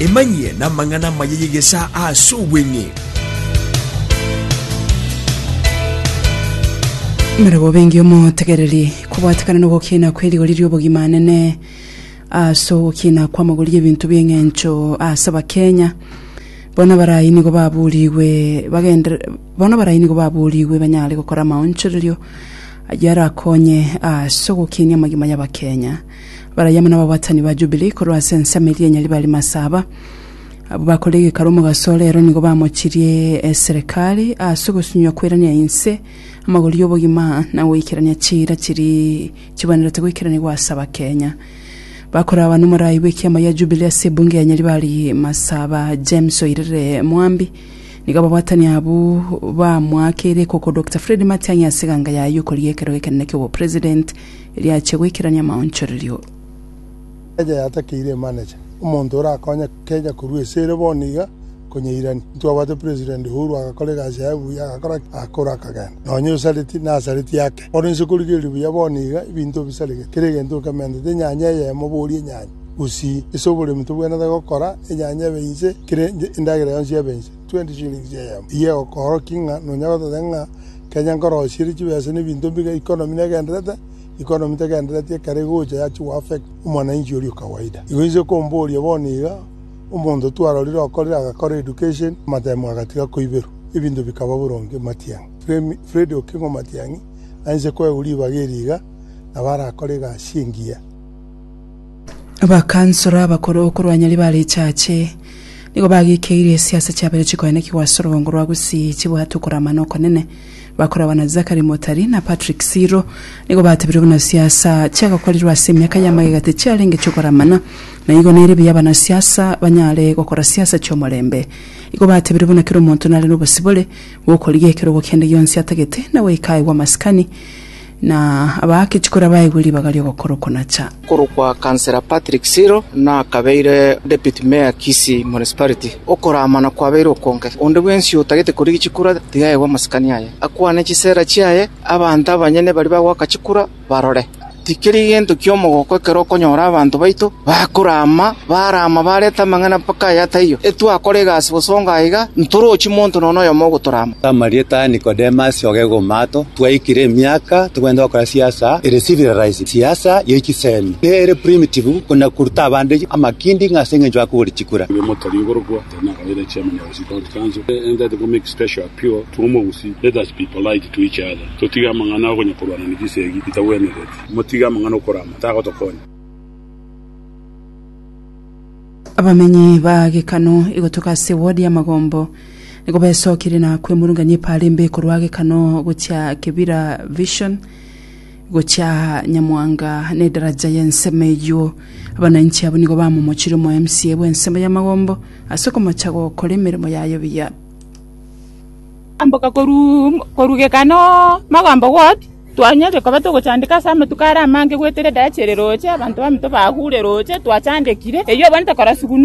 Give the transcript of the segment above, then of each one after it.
Emanyie namang'ana amaya y'egesaa aase obweng'e. Mbere bobengi omotegereri kobwatekana nogokiina kwe rigori riobogima anene ase ogokiina kw'amagori y'ebinto bi'eng'encho ase abakenya bono barai nigo baburigwe bagender bono barai nigo baburigwe banyare gokora amaonchorerio ayio arakonye ase ogokinia amagima y'abakenya Barayio amo nababwatani ba Jubilii korwa ase ensemo eria enyari bare masaba. Abwo bakore egekaro omogaso ore ero nigo bamochirie eserekari ase ogosunywa kwerania inse, amagori y'obogima, na goikerania chiira chiri chibwenerete goikeranigwa ase Abakenya. Bakoraba nomorai bw'ekiama gia Jubilii ase ebunge ya enyari bare masaba James Oirere Mwambi nigo ababwatani abwo bamoakeire ekoko Dokita Fred Matiang'i ase eganga yaye y'okoria ekero ekenene ki'obopresident riachia goikerania amaonchorerio. Ekeeja yatakeire emanager, omonto orakonye Kenya korwa ase ere bono iga konyeirania. Ntwabwate President Uhuru agakora egasi yaye buya agakora ki? Agakora akagenda. Nonya osareti nasareti ake. Ore inse korigereria buya bono iga ebinto bisaregete. Kera egento nkementete enyanya eyemo bori enyanya. Gusii ase oboremi tobwenerete gokora enyanya ebe inse kera endagera yonsi ebe inse. Twenty shillings eyemo. Eyio egokoorokia ng'a nonya gototeba ng'a Kenya nkorosierie chibesa nebinto mbiga economy negenderete, economy tegendereti ekero egocha yachi go affect omwananchi oria okawaida. Igo inche komboria bono iga, omonto twarorire okorire agakora education, amatemo agatiga koiberwa, ebinto bikaba boronge Matiang'i, Fremi, Fred Okengo Matiang'i aise koegwa ribaga eri iga, nabo arakore egasi engiya. Abakansoro abakoro okorwa nyari ba richache nigo bagikeirie esiasa chiabere chikoenekigwa ase orobongo rwa Gusii chibwate okorama na okonene. Bakoragwa na Zachary Motari na Patrick Siro nigo batebirwe buna siasa chiagakorirwe ase emiaka y'amagega tichiarenge chiokoramana na igo nere buya abanasiasa banyare gokora siasa chi'omorembe. Igo batebirwe buna kera omonto nare nobosibore bw'okorigia ekerogo kende gionsi atagete na goika aye bw'amasikani Na abaake chikura baegwe ribaga ri'ogokora oko na cha. Okorokwa Councillor Patrick Siro nakabeire Deputy Mayor Kisii Municipality. Okoramana kwabeire okonge. Onde bwensi otagete korigia chikura tiga aegwe amasikani aye, akwane chisera chiaye, abanto abanyene baria bagoaka chikura barore. Tikeri gento ki'omogoko ekero okonyora abanto baito Bakorama, barama, bareta amang'ana mpaka aya ataiyo, etwakora egasi bosongo aiga, ntorochi monto nonya oyomo ogotorama. Amarieta a Nikodemus ogegoma ato, twaikire emiaka togenda gokora siasa ere civilized, siasa ye chisemi, ere primitive, kona koruta abande amakindi ng'a ase engencho akogori chikura. abamenyi ba Gekano igotoka ase ward ya Magombo nigo besokire na kwemurungania epaara embe korwa Gekano gochia Kibira Vision gochia Nyamwanga na edaraja ya ensemo eyio. Abananchi abo nigo bamomochire omo MCA bwa ensemo ya Magombo ase okomocha gokora emeremo yaye buya. Amboka korwa korwa Gekano Magombo ward. Twanyorire koba togochandeka ase amatuko are amange goetera edarachi ere roche, abanto baminto bagure roche twachandekire. Eyio obonete korasugwa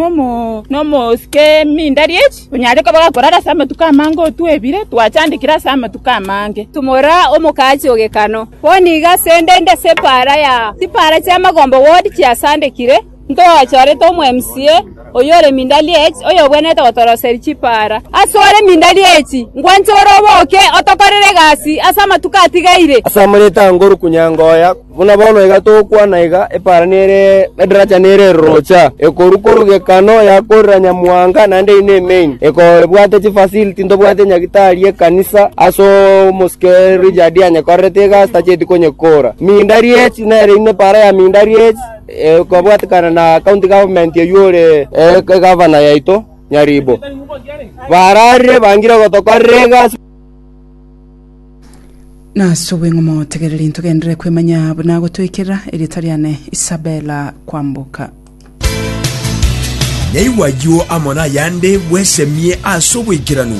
nomosike mindari echi, onyare koba gakorara ase amatuko amange otwebire, twachandekire ase amatuko amange. Tumora omokaachi o Gekano. Bono iga asende inde ase epaara ya chipara chi'amagombe ward chiasandekire. Ntogachorete omwemsie oyore mindali echi, oyobwenerete gotoroseri chipaara. Asore mindali echi, nkwanche ore oboke otokorere egasi ase amatuko atigaire. Ase amareta a Ngoru Kunyangoya, buna bono iga togokwana iga, epaara nere edaracha nere erorocha, ekorwa korugekano yakorera Nyamuhanga naende eri ne main, ekobwate chifasiliti ntobwate nyagitari y'ekanisa ase omosike Richard anyekorerete egasi tacheti konyekora. Mindali echi nere ime epaara ya mindali echi. kobwatekana na county government oyio ore egavana yaito Nyaribo, bararire bangire gotokorera egasi. Nase obweng'omo tegereri ntogenderere kwemanya buna gotoikerera erieta riane Isabella kwamboka. Naigwe ayio amo nayande bwesemie ase oboikeranu.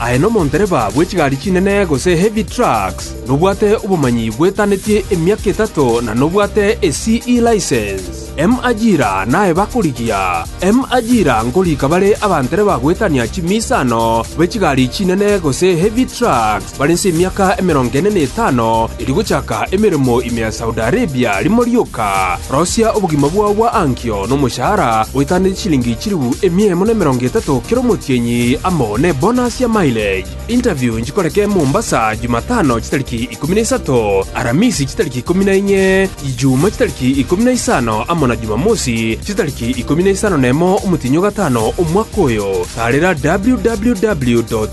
Aye nomondereba bwe chigari chinene gose heavy trucks, nobwate obomanyi bwetanetie emiaka etato na nobwate e CE license. M ajira naye bakorigia. M ajira nkorika bare abandereba goetania chimiisano be chigari chinene gose heavy trucks. Bare inse emiaka emerongo ene na etano erio gochaka emeremo ime ya Saudi Arabia, rimo rioka rosia obogima bwao bwa ankio nomoshahara oetaneti chilingi chilifu emia emo na emerongo etato kera omotienyi amo nebonus ya mileage. Interview nchikoreke Mombasa Jumatano chitariki ikomi na isato, Aramisi chitariki ikomi na inye, Ijumaa chitariki ikomi na isano amo na Jumamosi chitariki ikomi na isano nemo omotienyi o gatano omwaka oyo. Taarera www.